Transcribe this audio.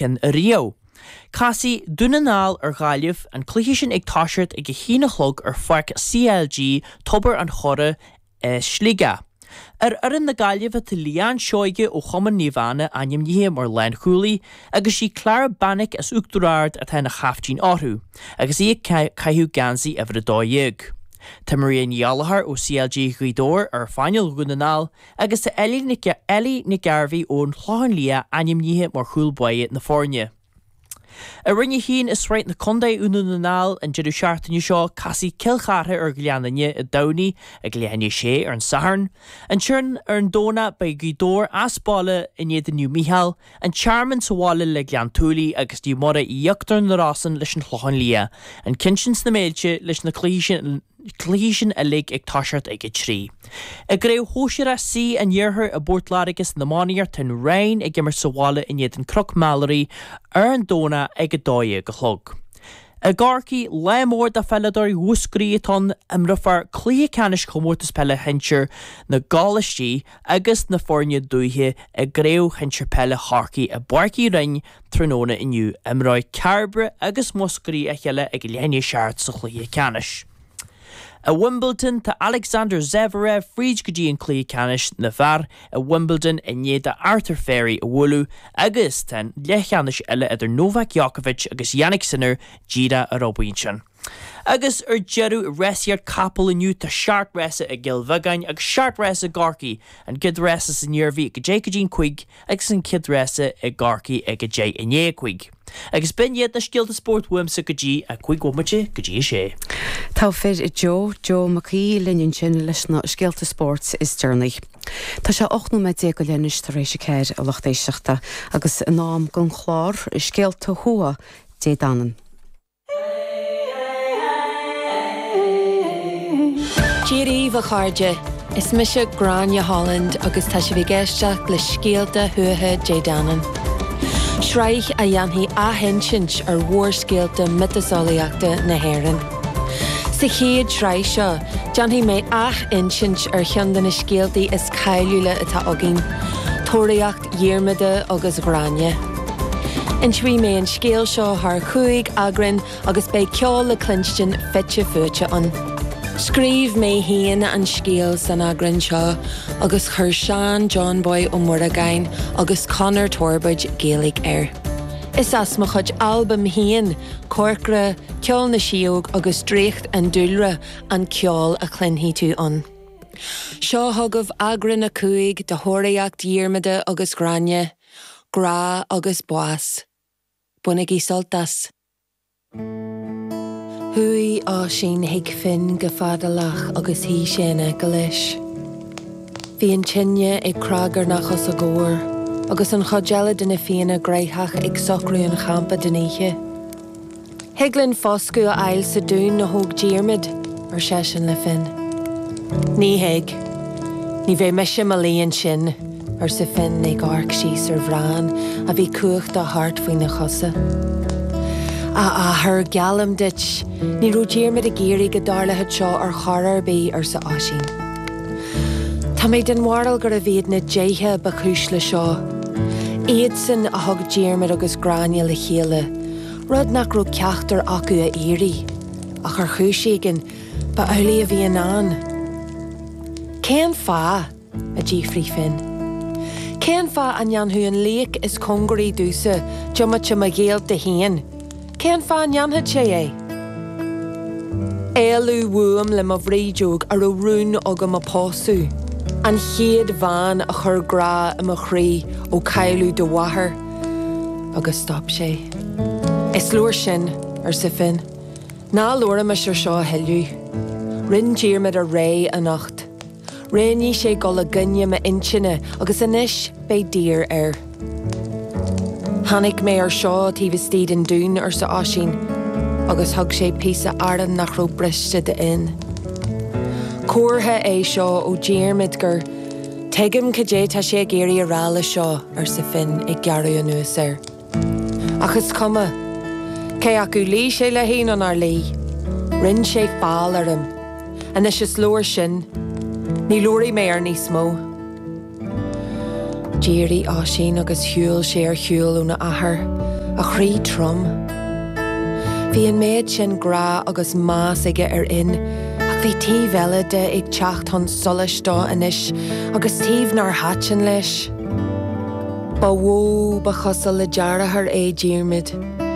in Rio. Casfaidh Dún na nGall ar Ghaillimh, an cluiche sin ag toiseacht ag a haon a chlog ar pháirc CLG Tobar an Choire i Sligeach. Ar fhoireann na Gaillimhe tá Leanne Seoige ó chumann Naomh Anna ainmnithe mar lánchúlaí agus sí Clara Beanick as Uachtar Ard atá ina chaiftín orthu agus í ag caitheamh geansaí uimhir a dó dhéag. Tá Maria Ní Ghallachair ó CLG Ghaoth Dobhair ar phainéal Dhún na nGall agus tá Ellie Nic Gairbheith ón Chlochán Liath ainmnithe mar chúl báire na foirne. I Roinn 1 i Sraith na Contae i nDún na nGall an deireadh seachtaine seo, casfaidh Cill Chartha ar Ghleann Fhinne i dTamhnaigh ag leath i ndiaidh a sé ar an Satharn. Ansin ar an Domhnach beidh Gaoth Dobhair as baile in éadan Naomh Micheál, An Tearmann sa bhaile le Gleann tSúilí agus Naomh Muire Íochtar na Rosann leis an Chlochán Liath, an ceann sin sna Méilte leis na cluichí sin uilig ag toiseacht ag a trí. I gCraobh Shóisear C an Iarthair i bPort Láirge san iománaíocht tá an Rinn ag imirt sa bhaile in éadan Cnoc Mheilearaí ar an Domhnach ag a dó dhéag a chlog. I gCorcaigh lá mór do pheileadóirí Mhúscraí atá ann, imreofar cluiche ceannais Chomórtas Peile Shinsir na gColáistí, agus na foirne dúiche i gCraobh Shinsir Peile Chorcaí i bPáirc Uí Rinn tráthnóna inniu, imreoidh Cairbre agus Múscraí a chéile ag leath i ndiaidh a seacht sa chluiche ceannais. I Wimbledon, tá Alexander Zverev fríd go dtí an cluiche ceannais na bhfear i Wimbledon i ndiaidh dó Arthur Fery a bhualadh agus tá an leathcheannais eile idir Novak Djokovic agus Jannik Sinner díreach ar obair ansin. Agus ar deireadh, i rásaíocht capall inniu, tá seacht rása i gCill Bheagáin agus seacht rása i gCorcaigh, an chéad rása san Iarmhí ag 10 go dtí an cúig agus an chéad rása i gCorcaigh ag 10 i ndiaidh a cúig. Agus b'in iad na scéalta spóirt uaimse go dtí a cúig bhomaite go dtí a sé. Togha fir, Joe Joe Mac Aoidh linn ansin leis na scéalta spóirt is deireanaí. Tá sé ocht nóiméad déag go leith anois tar éis a ceathair, a lucht éisteachta, agus in am don chlár Scéalta Thuatha Dé Danann. Dia dhaoibh a chairde, is mise Gráinne Holland agus tá sibh ag éisteacht le Scéalta Thuaithe Dé Danann, sraith a dhéanfaidh athinsint ar mhórscéalta miotaseolaíochta na hÉireann. Sa chéad sraith seo, déanfaidh mé ath-insint ar cheann de na scéaltaí is cáiliúla atá againn, Tóraíocht Dhiarmada agus Ghráinne. Inseoidh mé an scéal seo thar chúig eagrán agus beidh ceol le cluinstin fite fuaite ann. Scríobh mé féin an scéal san eagrán seo agus chuir Seán 'Johnboy' Ó Muireagáin agus Conor Torbóid 'Gaeilge' air. Is as mo chuid albaim féin, Corcra, Ceol na Síóg agus Draíocht an Dúlra an ceol a chluinfidh tú ann. Seo chugaibh eagrán a cúig de thóraíocht Dhiarmada agus Ghráinne, grá agus bás. Bainigí sult as. Chuaigh Oisín chuig Finn go fadalach agus shuigh sé in aice leis. Bhí an tine ag cnagarnach os a gcomhair agus an chuid eile de na Fianna gnoitheach ag socrú an champa den oíche. Thig linn foscadh a fháil sa dún a thóg Diarmaid, ar seisean le Finn. Ní thig. Ní bheidh mise i mo luí ansin, arsa Finn ag amharc síos ar Bhran a bhí cuachta thart faoina chosa. A athair, geallaim duit, ní raibh Diarmaid ag iarraidh go dtarlódh seo ar chor ar bith, arsa Oisín. Tá mé den bharúil gurbh iad na déithe ba chúis leis seo. Iadsan a thug Diarmaid agus Gráinne le chéile. rud nach raibh ceachtar acu a iarraidh, ach ar chúis éigin, ba amhlaidh a bhí i ndán. Cén fáth? a d'fhiafraigh Finn. Cén fáth a ndéanfadh an laoch is cóngaraí domhsa diomaite mo ghaolta féin, cén fáth a ndéanfadh sé é? Éalú uaim le mo bhrídeog a raibh rún agam a pósadh, an chéad bhean a chuir grá i mo chroí ó cailleadh do mháthair, Agus stop sé. Is leor sin, arsa Finn. Ná labhraimis ar seo a thuilleadh. Rinn Diarmaid a rogha anocht. Roghnaigh sé gabháil i gcoinne m'intinne agus anois beidh daor air. Tháinig mé ar seo taobh istigh den dún, arsa Oisín, agus thug sé píosa aráin nach raibh briste d'Fhinn. Comhartha é seo ó Dhiarmaid gur. Tuigim cad é tá sé ag iarraidh a rá leis seo, arsa Finn ag gearradh anuas air. Ach is cuma. Cé acu luigh sé léi nó nár luigh, rinn sé feall orm. Anois is leor sin. Ní labharfaidh mé air níos mó. D'éirigh Oisín agus shiúil sé ar shiúl óna athair, a chroí trom. Bhí an méid sin grá agus meas aige ar Fhinn, Ach bhí taobh eile de ag teacht chun solais dó anois, agus taobh nár thaitin leis. Ba mhó ba chosúil le deartháir é Diarmaid,